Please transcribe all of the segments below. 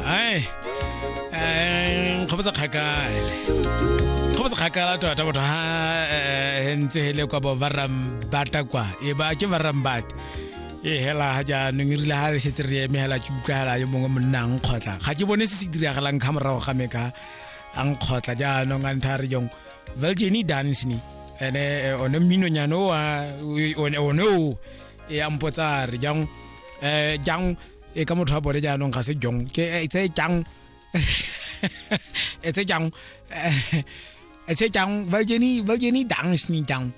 ai nkgopotsa kgakale nkgopotsa kgakala tota batho ha ntse hele kwa bo barambata kwa e ba ke barambata e hela ha jaanong e rile ha re setse re eme hela ke utlwagela yo mongwe monna a nkgotla ga ke bone se se diragalang ka morago ga me ka a nkgotla jaanong a ntha re jong veljeni dance ni ene one mminonyane o one o e a mpotsa re jang eh jang e ka motho a bone jaanong ga se jong ke eh, e tse jang e tse jang e tse jang ba ke ni ba ke ni dance ni jang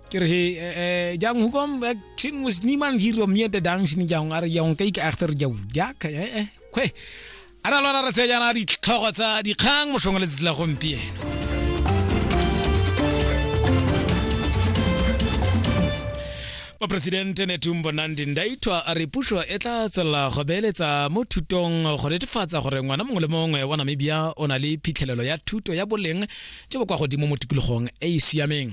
ke re eh jang hoe kom ek sien mos niemand hier om mee te dance ni jang are jang kyk egter jou ja eh eh kwe A ra lona re tse jaana ditlhogo tsa dikgang motlhong letsatsi la gompieno. moporesidente netumbo nandi ndaitwa a re puso e tla tswelela go beeletsa mo thutong go netefatsa gore ngwana mongwe le mongwe wa namibia o na le phitlhelelo ya thuto ya boleng jo bo kwa godimo mo tikologong e e siameng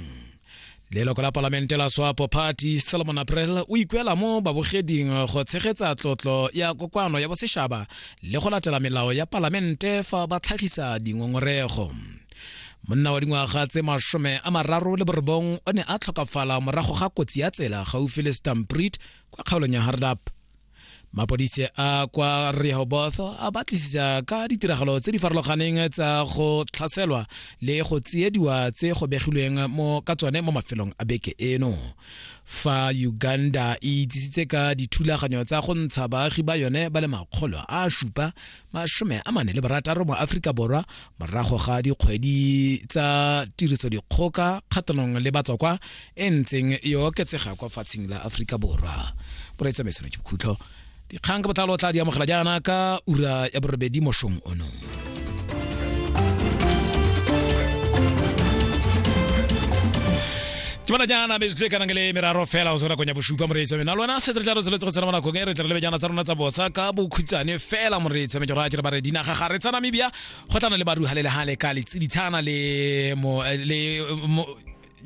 leloko la palamente la swapo party solomon april o ikuela mo babogeding go tshegetsa tlotlo ya kokoano ya bosešaba le go latela melao ya palamente fa ba tlhagisa dingongorego monna wa dingwaga tse masome a mararo le borobong o ne a tlhokafala morago ga kotsi ya tsela gaufi le stampret kwa kgaolong ya hardap mapodise a kwa rehoboth a batlisisa ka ditiragalo tse di farologaneng tsa go tlhaselwa le go tsiediwa tse go begilweng mo ka tsone mo mafelong a beke eno fa uganda e itsisitse ka dithulaganyo tsa go ntsha baagi ba yone ba le makgolo a supa masome a mane le barataro mo aforika borwa morago ga dikgwedi tsa tiriso dikgoka kgatlhanong le batswakwa e ntseng e oketsega kwa fatsheng la aforika borwa boraitsa mesone ke bokhutlo dikgang ka botlalo o tla di amogela jaana ka ura ya borobedi mošong ono ke bona jaana be tle kana le meraro fela go sera konya bosupa moreetsi wa mena lona se tla re tseletse go tsena bona kongere tle re lebe jana tsa rona tsa bosa ka bokhutsane fela moreetsi me ke ra ke re ba re dinaga ga re tsa Namibia go tlana le baru halele hale ka le tsiditshana le mo le mo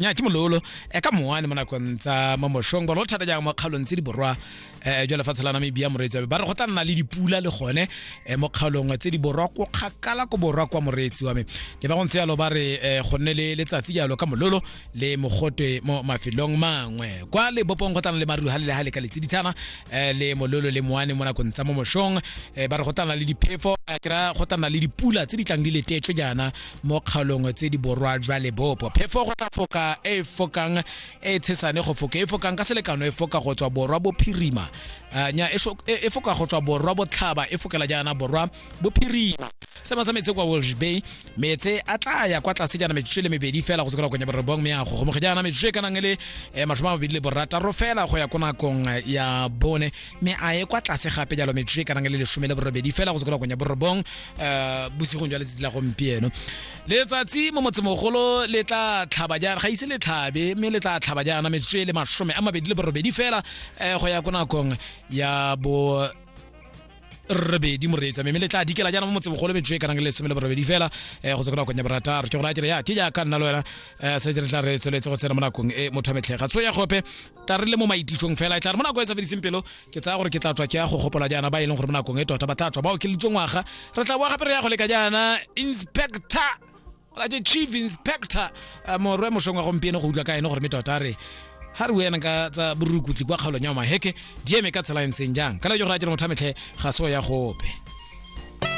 nya ke mololo e ka moane mo nakong tsa mamoshong ba lo thata jang mo kgaolong tse di borwa eh jwa lefatshe la namibia moreetsi ba re go tla nna le dipula le gone eh, mo kgaolong tse di borwa ko kgakala ko borwa kwa moreetsi wa me le ba go ntse yalo ba re eh, go nne le letsatsi jalo ka mololo le mogotwe mo mafelong mangwe kwa lebopong go tlana le maruru ga le le ga le ka letsiditshana eh, le mololo le moane mo nakong tsa mo moshong eh, ba re go tlana le diphefo eh, ke ra go tlana le dipula tse di tlang di letetswe jaana mo kgaolong tse di borwa jwa lebopo phefo go tla foka e fokang e tshesane go foka e fokang ka selekano e foka go tswa borwa bophirima eh, nya e, e, e foka go tswa borwa botlhaba e fokela jaana borwa bophirima sema sa metse kwa Walsh Bay metse a tla ya kwa tlase jaana metsotso le mebedi fela go tsokela konya borobong me ya go gomoge jaana metsotso e ka nang le eh, mashome a mabedi le borataro fela go ya ko nakong eh, ya bone me a ye kwa tlase gape jalo metsotso e ka nang le lesome le borobedi fela go tsokela konya borobong bosigong jwa letsatsi la gompieno letsatsi mo motsemogolo le tla tlhaba jaana ga ise le tlhabe mme le tla tlhaba jaana metsotso e le masome a mabedi le borobedi fela um go ya ko nakong ya bo robedi moreetsa mme le tla dikela jaana mo motsemogolo metsotso e kanang le lesome le borobedi fela um go se ko nakong ya borataro ke go raya kere ya ke jaaka nna le wena um se re tla re tsweletse go tsena mo nakong e motho a metlhega so ya gope tla re le mo maititsong fela e tla re mo nako e sa fediseng pelo ke tsaya gore ke tla tswa ke ya go gopola jaana ba e leng gore mo nakong e tota ba tla tswa ba okeleditswe ngwaga re tla boa gape re ya go leka jaana inspector ke chief inspector eh, morwe mošong wa gompieno go utlwa ka ene gore me tota re ga re wena ka tsa borukutli kwa kgaolong ya maheke di eme ka tsela e ntseng jang ka le jo gore a jere motho a metlhe ga se o ya gope